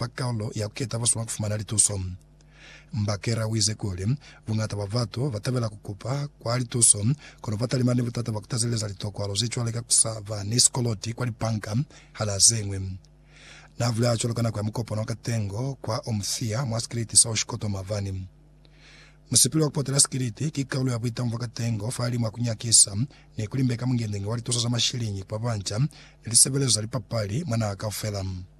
kwa Karolo ya ku keta boso mwa ku fumana lituso. Mbakera uize kuli, Buñata bwa batu ba tabela ku kupa kwa lituso, kono ba talimana ni butata bwa ku tazeleza litokwalo ze cwale ka ku sa ba ni sikoloti kwa lipanka hana ze ñwi. Na bulela cwalo ka nako ya mukopano wa katengo kwa Omuthia mwa sikiliti sa Oshikoto mavani. Musipili wa ku potela sikiliti ki kaulu ya buitangu bwa katengo fahalimu a ku nyakisa ni ku limbeka mungendengi wa lituso za mashiliñi kwa banca ni lisebelezo za lipapali mwa naha kaufela.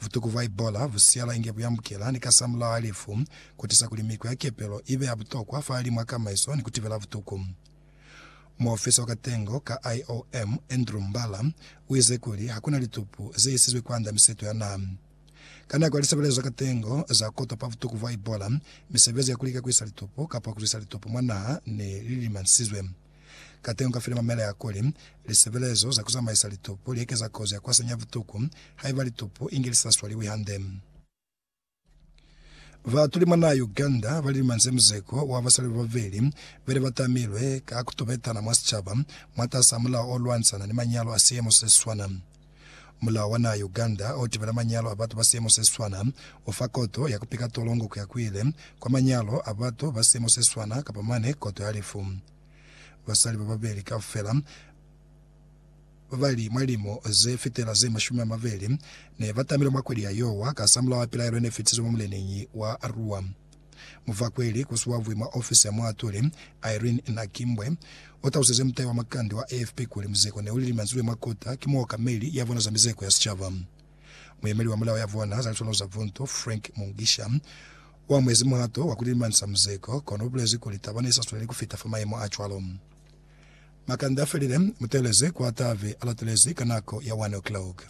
Vutuku bwa Ebola bu siyala inge bu yambukela ni kasamulaho a lifu, ku tisa kuli miko ya kepelo i be ya butokwa fahalimw'a kamaiso ni ku tibela butuku. Muofisa wa katengo ka IOM, Andrew Mbala, u ize kuli ha ku na litupu ze isizwe kwand'a miseto ya naha. Ka nako ya lisebelezo za katengo za k'o topa vutuku bwa Ebola, misebezi ya ku lika ku isa litupu kapa ku tlisa litupu mwa naha ne li lilimansizwe. Kateñi u ka filema mela ya kuli, Lisebelezo za ku zamaisa litupu li ekeza kozi ya ku hasanya butuku haiba litupu inge li sa swaliwi hande. Baatuli mwa naha Uganda ba lilumanyize muzeko wa basali bababeli be ne ba tamilwe ka ku tobetana mwa sicaba mwatasaa mulao o lwanisana ni manyalo a siemo se si swana. Mulao wa naha ya Uganda o tibela manyalo a batu ba siemo se siswana u fa koto ya ku pika tolongo ku ya ku ile kwa manyalo a batu ba siemo se siswana kapa mane koto ya lifu. Basali ba babeli kaufela ba ba li mwa limo ze fitela ze mashumi a mabeli ne ba tamilwe mwa kweli ya Yowa ka sa mulao wa pilaelo ye ne fitizwe mwa muleneñi wa Arua. Muvakweli kusiwavwi mwa ofisi ya muatuli, Irene Nakimbwe, utalusize mutai wa makande wa AFP kuli muzeko neuli limanzilwe mwa kota ki muokameli yavona za mizeko ya sicaba. Muyemeli wa mulao yavona za litono za buntu, Frank Mugisha, uamuhezi muhato wa kulilimanisa muzeko, kono ubulezi kuli taba neisa sweleli kufita fa mayemo acwalo. Makande afelile, muteeleze kwa tabe alatelezi ka nako ya 1 o'clock.